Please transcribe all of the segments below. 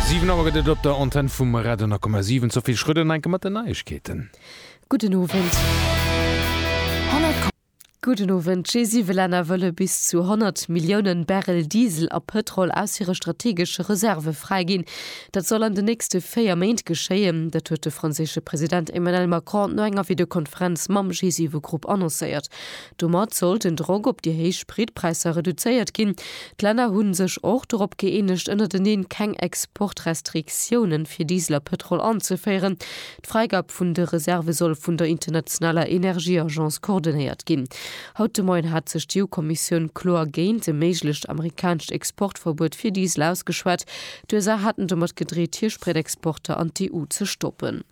Siwen Auer gëtt et op der Antenn vum Radio 10,7. D'Sophie Schröder no enke mat den Neiegkeeten. Gudden Owend. Gudden Owend. G7 Länner wëlle bis zu 100 Milliounen Barrel Diesel a Pëtrol aus hire strategesche Reserve fräiginn. Dat soll an den nächste véier Méint geschéien. Dat huet de franséische President Emmanuel Macron no enger Videokonferenz mam G7-Grupp annoncéiert. Domat soll den Drock op déi héich Spritpräisser reduzéiert ginn. D'Länner hu sech och dorop gëeenegt, ënnerteneen keng Exportrestriktiounen fir Diesel a Pëtrol anzeféieren. D'Fräigab vun de Reserve soll vun der internationaler Energieagence coordonéiert ginn. Haut de Moien hat sech d'EU-Kommissioun kloer géint e méiglecht amerikanescht Exportverbuet fir Diesel ausgeschwat. D'USA haten domat gedreet, hir Spritexporter an d'EU ze stoppen.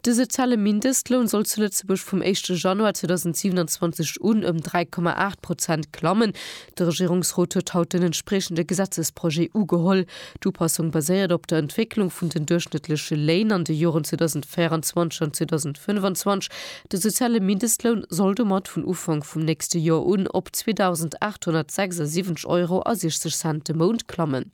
De soziale Mindestloun soll zu Lëtzebuerg vum éischte Januar 2027 un ëm 3,8 Prozent klammen. De Regierungsrot huet haut den entspriechende Gesetzesprojet ugeholl. D'Upassung baséiert op der Entwécklung vun den duerchschnëttleche Léin an de Joren 2024 an 2025. De soziale Mindestloun soll domat vun Ufank vum nächste Joer un op 2.876 Euro a 60 Cent de Mount klammen.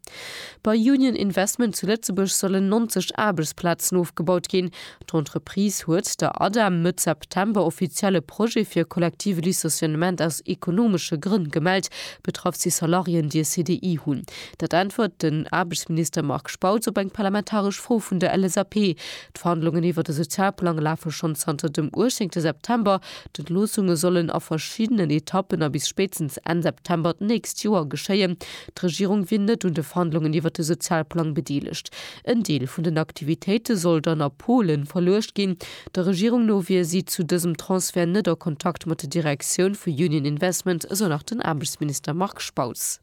Bei Union Investment zu Lëtzebuerg sollen 90 Aarbechtsplazen ofgebaut ginn. D'Entreprise huet der Ada Mëtt September offiziell e Projet fir e kollektive Licenciement aus ekonomesche Grënn gemellt. Betraff si Salariéen, déi e CDI hunn. Dat äntwert den Aarbechtsminister Marc Spautz op eng parlamentaresch Fro vun der LSAP. D'Verhandlungen iwwert e Sozialplang lafe schonn zanter dem uechzéngte September. D'Entloossunge sollen a verschiddenen Etappen a bis spéitstens Enn September d'nächst Joer geschéien. D'Regierung wier net un de Verhandlungen iwwert de Sozialplang bedeelegt. En Deel vun den Aktivitéite soll dann a Polen verluecht ginn. Der Regierung no wier si zu dësem Transfert net a Kontakt mat der Direktioun vu Union Investment, esou nach den Aarbechtsminister Marc Spautz.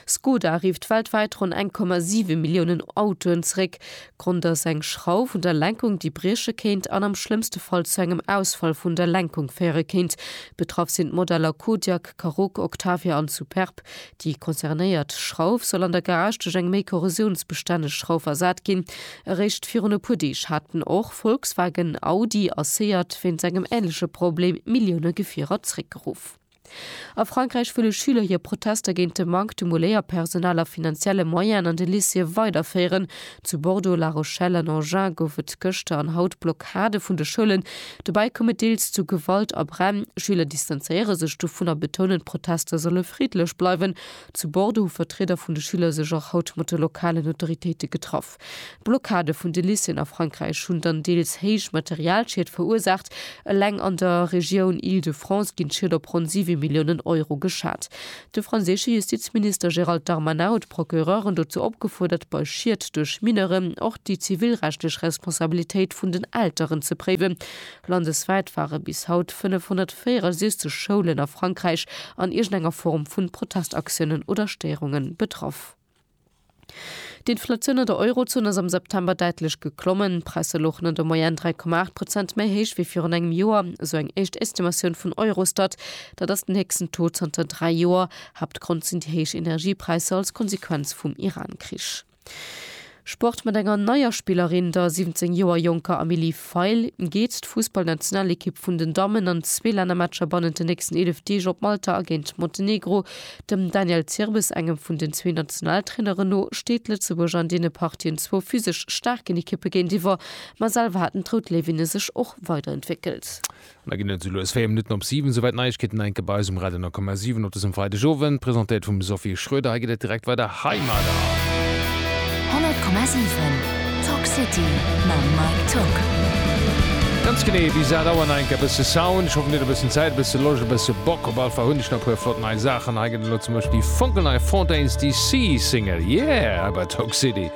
Skoda rifft weltwäit ronn 1,7 Milliounen Autoen zeréck. Grond ass eng Schrauf un der Lenkung, déi brieche kéint an am schlëmmste Fall zu engem Ausfall vun der Lenkung féiere kéint. Betraff sinn d'Modeller Kodiaq, Karoq, Octavia an Superb. Déi concernéiert Schrauf soll an der Garage duerch eng méi korrosiounsbestänneg Schrauf ersat ginn. Eréischt virun e puer Deeg haten och Volkswagen, Audi a Seat wéinst engem änleche Problem Millioune Gefierer zeréckgeruff. A Frankräich wëlle Schüler hir Protester géint de Manque de Moulléierpersonal a finanzielle Moyenen an de Lycéeë weiderféieren. Zu Bordeaux, La Rochelle an Agen gouf et gëschter an haut Blockade vun de Schoulen. Dobäi koum et deels zu Gewalt a Bränn. Schüler distanzéiere sech dovun a betounen, d'Protester solle friddlech bleiwen. Zu Bordeaux hu Vertrieder vun de Schüler sech och haut mat de lokalen Autoritéite getraff. Kaf. D'Blockade vun de Lycéeën a Frankräich hunn dann deels héich Materialschied verursaacht. Eleng an der Regioun Île-de-France ginn d'Schied op ronn siwe Milliounen Euro geschat. De franséische Justizminister Gérald Darmanin huet d'Procureuren dozou opgefuerdert, bei Schied duerch Mineuren och déi zivilrechtlech Responsabilitéit vun den Elteren ze préiwen. Landeswäit ware bis haut 564 Schoulen a Frankräich an iergendenger Form vu Protestaktiounen oder Stéierunge betraff. D'Inflatioun an der Eurozon ass am September däitlech geklommen. D'Presse louchen an der Moyenne 3,8 Prozent méi héich wéi virun engem Joer, esou eng éischt Estimatioun vun Eurostat. Dat ass den héchsten Taux zanter dräi Joer. Haaptgrond sinn déi héich Energiepräisser als Konsequenz vum Iran-Krich. Sport mat enger neier Spillerin, der 17 Joer jonker Emilie Feil, geet d'Fussballnationalekipp vun den Dammen an zwee Lännermatcher bannent den nächsten 11 Deeg op Malta a géint Montenegro. Dem Daniel Zirbes, engem vun den zwee Nationaltraineren no, steet Lëtzebuerg an deene Partien zwou physesch staarken Ekippe géintiwwer, ma selwer haten d'Rout Léiwinne sech och weiderentwéckelt. Mir ginn et esou lues 4 Minutten op 7, souwäit d'Neiegkeeten enke bei eis um Radio 10,7 op dësem Freideg Owend, presentéiert vum Sophie Schroeder. Hei geet et direkt weider hei mat. 100,7 Talk City mam Mike Tock. Ganz genee bis 8 Auer nach enke e bësse Sound. Ech hoffen dir hutt e bëssen Zäit, e bësse Loscht, e bësse Bock op allefall hunn ech nach e puer flott nei Saachen. Hei gëtt elo zum Beispill déi fonkelnei Fontaines DC Single, yeah, hei bei Talk City.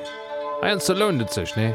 Hei an ze lount et sech, nee?